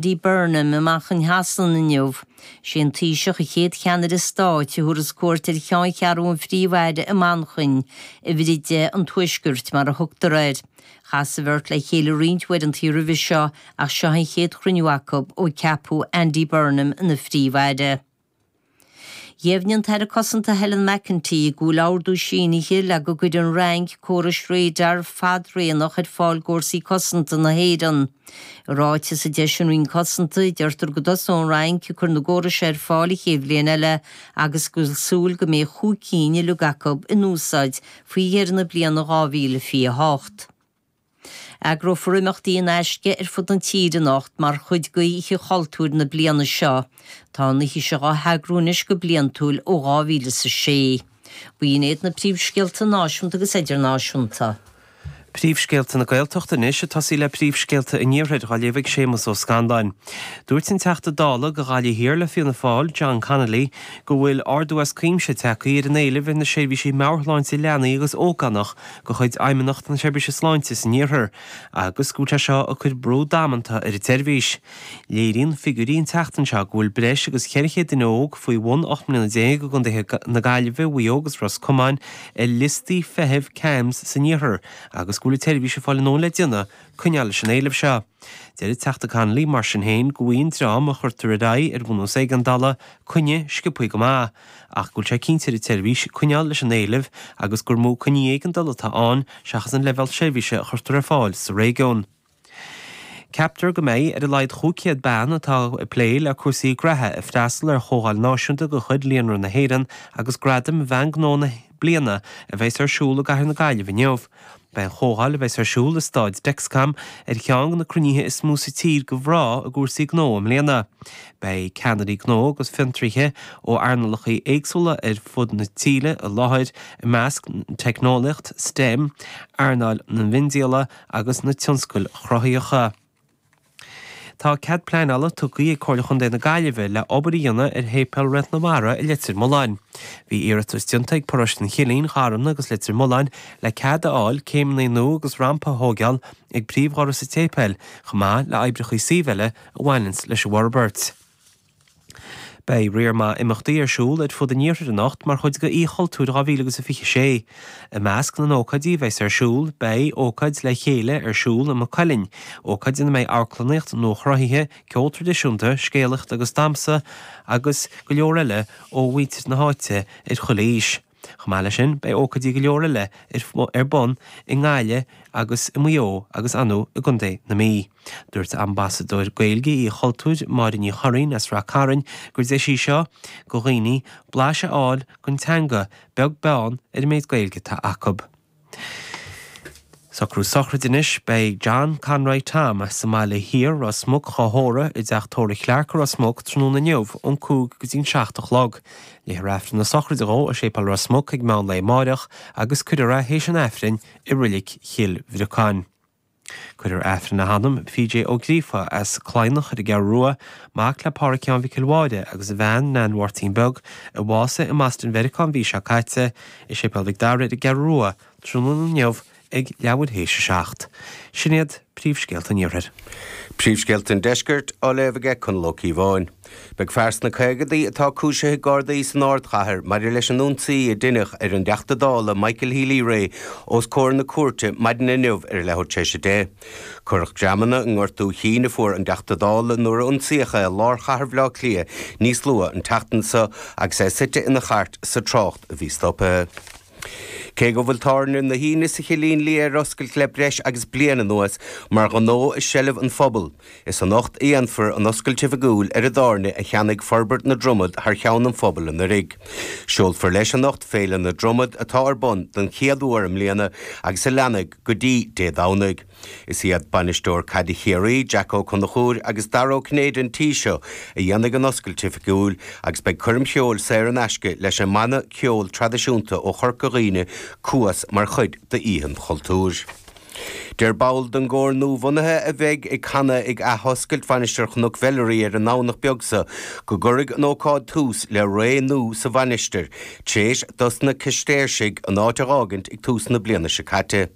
Andy Burnham i Manchain Shasana inniu. Is é an Taoiseach an chéad Cheannaire Stáit a thabharfas cuairt ar cheanncheathrú an Phríomh-Aire i Manchain, Uimhir a Deich an Tuaiscirt, mar a thugtar air. Chas an bheirt le chéile roinnt uaireantaí roimhe seo ach seo an chéad chruinniú acu ó ceapadh Andy Burnham ina Phríomh-Aire. Dheimhnigh an tAire Cosanta Helen McEntee go bhfuil ordú sínithe le go gcuirfidh an Fhrainc córais radar fadraonach ar fáil d'Fhórsaí Cosanta na hÉireann. I ráiteas a d'eisigh an Roinn Cosanta, deirtear go dtosóidh an Fhrainc ag cur na gcóras ar fáil an chéad bhliain eile agus go bhfuil súil go mbeidh chúig cinn uilig acu in úsáid faoi dheireadh na bliana 2028. Eagrófar imeachtaí in aisce ar fud na tíre anocht mar chuid d'Oíche Chultúir na bliana seo. Tá an oíche seo á heagrú anois go bliantúil ó 2000 is a sé. B'in iad na príomhscéalta náisiúnta agus idirnáisiúnta. Príomhscéalta na Gaeltachta anois ag tosaí le príomhscéalta an Iarthair á léamh ag Séamus Ó Scanláin. Dúirt an Teachta Dála do Ghaillimh Thiar le Fianna Fáil, John Connolly, go bhfuil ardú as cuimse tagtha ar an éileamh ar na seirbhísí meabhairshláinte leanaí agus ógánach de chuid Fheidhmeannacht na Seirbhíse Sláinte san Iarthar agus go bhfuil sé seo ag cur brú damanta ar an tseirbhís. Léiríonn figiúirí an tseachtain seo go bhfuil breis agus 400 duine óg faoi bhun 18 mbliana i gcontaetha na Gaillimhe, Mhaigh Eo agus Ros Comáin ar liostaí feithimh CAMHS san Iarthar agus go bhfuil an tseirbhís ag fáil a ndóthain le déanamh coinneáil leis an éileamh seo. Deir an Teachta Connolly, mar sin féin, go bhfaigheann an dream a chuirtear ar aghaidh ar bhunús éigeandála coinne sciobthaí go maith. ach go bhfuil sé ag cinnt ar an tseirbhís coinneáil leis an éileamh agus gur mó coinní éigeandála atá ann seachas an leibhéal seirbhíse a chuirtear ar fáil sa réigiún. Ceaptar go mbeidh ar a laghad chúig chéad bean atá ag plé le cúrsaí graithe ag freastal ar chomhdháil náisiúnta de chuid Líonra na hÉireann agus Gradaim Bhean Gnó na bliana a bheas ar siúl i gcathair na Gaillimhe inniu. Beidh an chomhdháil a bheas ar siúl i Staid Dexcom ar cheann de na cruinnithe is mó sa tír do mhná i gcúrsaí gnó i mbliana. Beidh ceannairí gnó agus fiontraithe ó earnálacha éagsúla ar fud na tíre i láthair, ina measc teicneolaíocht, STEM, earnáil an mhiondíola agus na tionscail chruthaitheacha. Tá cead pleanála tugtha ag Comhairle Chontae na Gaillimhe le obair a dhéanamh ar Shéipéal Réalt na Mara i Leitir Mealláin. Bhí iarratas déanta ag Paróiste an Chillín, Gharmna agus Leitir Mealláin le cead a fháil céimeanna nua agus rampa a thóigeáil ag príomhdhoras an tséipéil chomh maith le oibreacha suímh eile a bhaineanns leis an bhforbairt. Beidh riar maith imeachtaí ar siúl ar fud an Iarthair anocht mar chuid d'Oíche Chultúir 2026. I measc na n-ócáidí a bheas ar siúl, beidh, ócáid Le Chéile ar siúl i Maigh Cuilinn, ócáid ina mbeidh amharclannaíocht nua-chruthaithe, ceol traidisiúnta, scéalaíocht agus damhsa, agus go leor eile ó mhuintir na háite ar chuile aois. Chomh maith leis sin, beidh ócáidí go leor eile ar bun i nGaillimh agus i Maigh Eo agus anonn i gContae na Mí. Dúirt Ambasadóir Gaeilge Oíche Chultúir, Máire Ní Churraoin as Ráth Chairn gur deis í seo go dhaoine blaiseadh a fháil den teanga, beag beann ar an méid Gaeilge atá acu. Socrú sochraide anois, beidh John Conroy Tom sa mBaile Thiar, Ros Muc, dhá thórramh i dTeach Tórraimh Clarke, Ros Muc, tráthnóna inniu ón cúig go dtí an seacht a chlog. Léifear Aifreann na sochraide dhó i Séipéal Ros Muc ag meán lae amáireach agus cuirfear é théis an Aifrinn i Reilig Chill Bhriocáin. Cuirfear Aifreann le hanam, P.J. Ó Gríofa as Cladhnach ar an gCeathrú Rua, mac le Pádhraic Sheáin Mhichíl Mháire agus a bhean, Nain Mháirtín Beag, a bhásaigh i mBoston Mheiriceá an mhí seo caite, i Séipéal Mhic Dara ar an gCeathrú Rua tráthnóna inniu ag leathuair théis a seacht. Sin iad príomhscéalta an iarthair. Príomhscéalta an deiscirt á léamh ag Conall Ó Cíobháin. Beidh fear sna caogaidí atá cúisithe Gardaí san ardchathair maidir leis an ionsaí a deineadh ar an dTeachta Dála Michael Healy-Rae os comhair na cúirte maidin inniu ar a leathuair tar éis a deich. Cuireadh greamanna i ngortú cinn a fuair an Teachta Dála nuair a ionsaíodh é i lár chathair Bhaile Átha Cliath níos luaithe an tseachtain seo agus é suite ina chairt sa trácht a bhí stoptha. Cé go bhfuil tábhairne na hInse sa Chillín Liath ar oscailt le breis agus bliain anuas mar ghnó i seilbh an phobail, is anocht a dhéanfar an oscailt oifigiúil ar an dtábhairne a cheannaigh Forbairt na Dromoda thar cheann an phobail anuraidh. Seolfar leis anocht Féile na Dromoda atá ar bun don chéad uair i mbliana agus a leanfaidh go dtí Dé Domhnaigh. Is iad Bainisteoir caide Chiarraí, Jack Ó Conchúir agus Dara Ó Cinnéide an tí seo a dhéanfaidh an oscailt oifigiúil agus beidh coirm cheoil saor in aisce leis an mbanna ceoil traidisiúnta ó Chorca Dhuibhne, Cuas, mar chuid d'Oíche Chultúir. Deir ball den gcór nuabhunaithe a bheidh ag canadh ag athoscailt Mhainistir Chnoc Mheilearaí ar an nDomhnach beag seo go gcuirfidh an ócáid tús le ré nua sa mhainistir, tréis dosna Cistéirsigh an áit a dh'fhágaint ag tús na bliana seo caite.